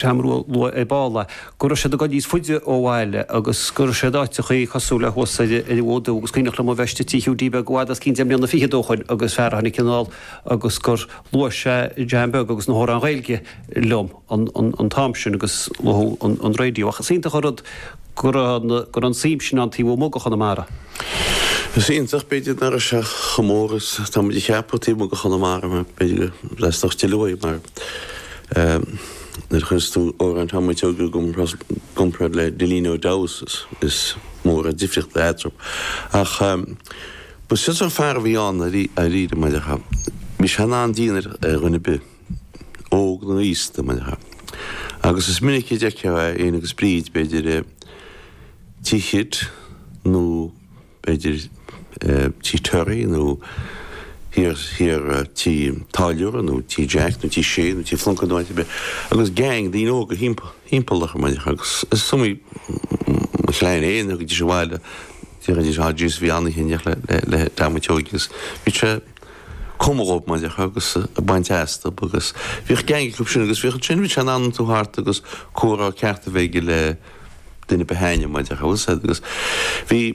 t-am rud a luaigh tú ar ball, go raibh siad ag dul níos faide ó bhaile agus go raibh siad áiteachaí cosúil le thuas ó thuaidh agus cuimhneach liom a bheith istigh Tigh Hiúdaí Beag i bhfad os cionn deich mbliana fichead ó shoin agus fear a tháinig anall agus gur luaigh sé John Beag agus na hamhráin Ghaeilge liom an t-am sin agus luaigh tú an radio ach is iontach an rud go raibh an suim sin ann taobh amuigh de Chonamara. Is iontach b'fhéidir nach raibh sé chomh mór is tá muid a cheapadh taobh amuigh de Chonamara mar b'fhéidir go bhfreastlódh sé liom uaidh mar Nuair a chuireas tú amhráin Tom an tSeoige i gcomparáid le Dilín Ó Deamhas is mór an difríocht eatarthu. Ach b'shin é an sórt fear a bhí ann dáiríre, mar a déarfá. Bhí sé in an-dian ar dhuine ar bith, óg nó aosta, mar a déarfá. Agus is minic a d'fheicfeá é fhéin agus Bríd, b'fhéidir, Tigh Khitt nó. b'fhéidir Tigh Terry nó thiar Tigh an Táilliúra nó Tigh Jack nó Tigh Sé nó Tigh Phlunkett nó áit ar bith, agus gang daoine óga thimpeall air mar a déarfá. Is iomaí mo chlann fhéin a thagaidís abhaile, déarfaidís, Á Jesu, bhí an-oíche le Tom an tSeoige agus bhí sé ag cumadh dhóibh mar a déarfá agus ag baint astu agus bhíodh gang acu sin agus bhíodh ansin, bhí sé in ann tiontú thart agus comhrá ceart a bheith aige le. duine ba shine mar a déarfá, bhfuil a fhios agat agus bhí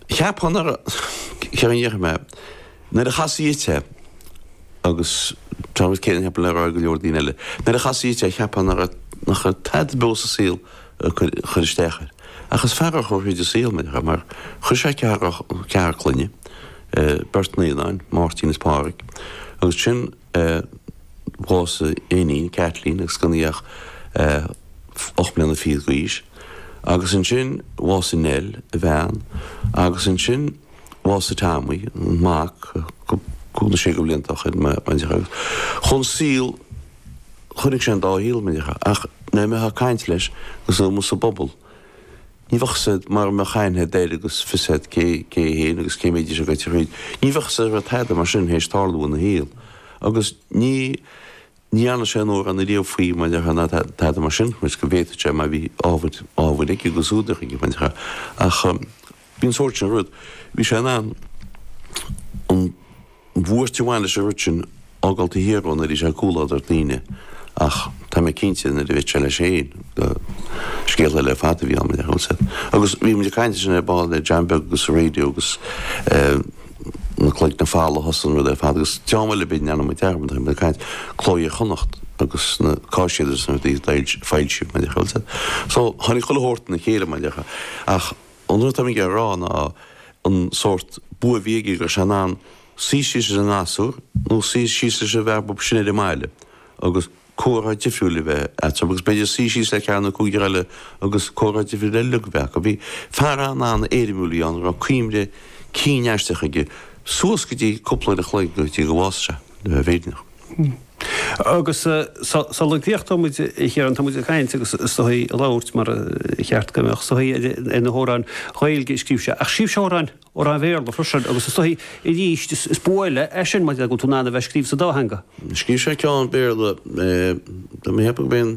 cheapfá nach raibh, céard a déarfaidh mé, nuair a chasfaí dhuit é agus tá an rud céanna cheapfainn le rá ag go leor daoine eile, nuair a chasfaí dhuit é cheapfá nach raibh tada beo sa saol ag cur isteach air. Ach is fear a chuaigh thríd an saol mar a déarfá mar chuir sé ceathrar clainne, beirt naíonáin, Máirtín is Pádhraic, agus sin, bhásaigh a iníon, Kathleen, agus gan í ach ocht mbliana fichead d'aois. Agus ansin bhásaigh Nell, a bhean, agus ansin bhásaigh Tommy, an mac, cúig nó sé de bhlianta ó shin, mar a déarfá. Agus chun saol, chonaic sé an dá shaol, mar a déarfá. Ach nuair a bheifeá ag caint leis, agus é amuigh sa bpobal, Ní bheadh a fhios agat mara mbeadh aithne agat air agus fios agat cé hé féin agus cé mhéad a bhí sé gaite thríd. Ní bheadh a fhios agat go raibh tada mar sin th'éis tarlú ina shaol. Agus ní ní dhearna sé aon amhrán ariamh faoi mar déarfá ná tada mar sin, cé go bhféadfadh sé mar bhí ábhar, ábhar aige agus údar aige mar déarfá. Ach bhí an sórt sin rud, bhí sé in ann an. bhuairt a bhain leis an rud sin, a fhágáil taobh thiar dhó nuair a bhíodh sé i gcomhluadar daoine, ach tá mé cinnte, nuair a bhíodh sé leis féin, gur scéal eile ar fad a bhí ann, mar a déarfá. Agus bhí muid ag caint ansin ar ball le John Beag agus an radio agus na Cloigne Folmha a thosaigh an rud ar fad agus dream eile b'in, ndearna muid dearmad, thosaigh muid ag caint, Cló Iar Chonnacht agus na caiséid agus na rudaí a d'fhoilsigh muid, mar a déarfá. So, tháinig chuile shórt ina chéile, mar a déarfá. Ach. An rud atá mé a rá ná an sórt bua a bhí aige go raibh sé in ann suí síos le gasúr nó suí síos leis an bhfear bocht sin ar an mbaile agus comhrá difriúil a bheith eatarthu agus b'fhéidir suí síos le ceathar nó cúigear eile agus comhrá difriúil eile a bheith acu. Fear an-an-éirimiúil a bhí ann a raibh cuimhne cinn aisteach aige suas go dtí cúpla uair a chloig go dtí gur bhásaigh sé, le bheith fírinneach. Agus sula dtiocfaidh muid a Chiarán, tá muid ag caint agus is saoithiúil ag labhairt mar a cheart go mbeadh, i dtaobh na hamhráin Ghaeilge a scríobh sé. Ach scríobh sé amhráin Bhéarla freisin agus is saoithiúil arís is bua eile é sin maidir le go bhfuil tú in ann a bheith scríobh sa dá theanga. Scríobh sé ceann Béarla, dá mbeadh a thiocfadh go mbeinn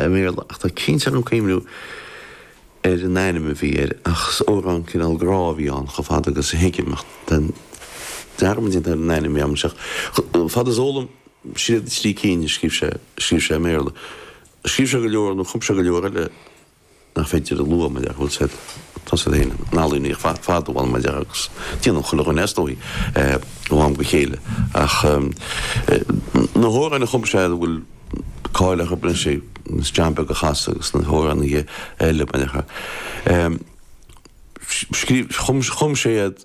i mBéarla, ach tá sé cinnte orm cuimhniú ar an ainm a bhí air, ach is amhrán cineál grá a bhí ann, chomh fada agus a thuigim, ach tá dearmad déanta ar an ainm, bhí am seo, chomh fada is a eol dom is iad na trí cinn a scríobh sé, scríobh sé i mBéarla, scríobh sé go leor nó chum sé go leor eile. nach féidir a lua, mar dhea, go bhfuil siad, tá siad féin ina n-ealaíona ar fad, a bhfanaim, mar dhea, agus déanann chuile dhuine, is dóigh, ó am go céile. Ach na hamhráin a chum sé, a bhfuil cáil orthu, ab é an Stream Beag a Chasadh agus na hamhráin eile, mar dhea, scríobh, chum sé iad,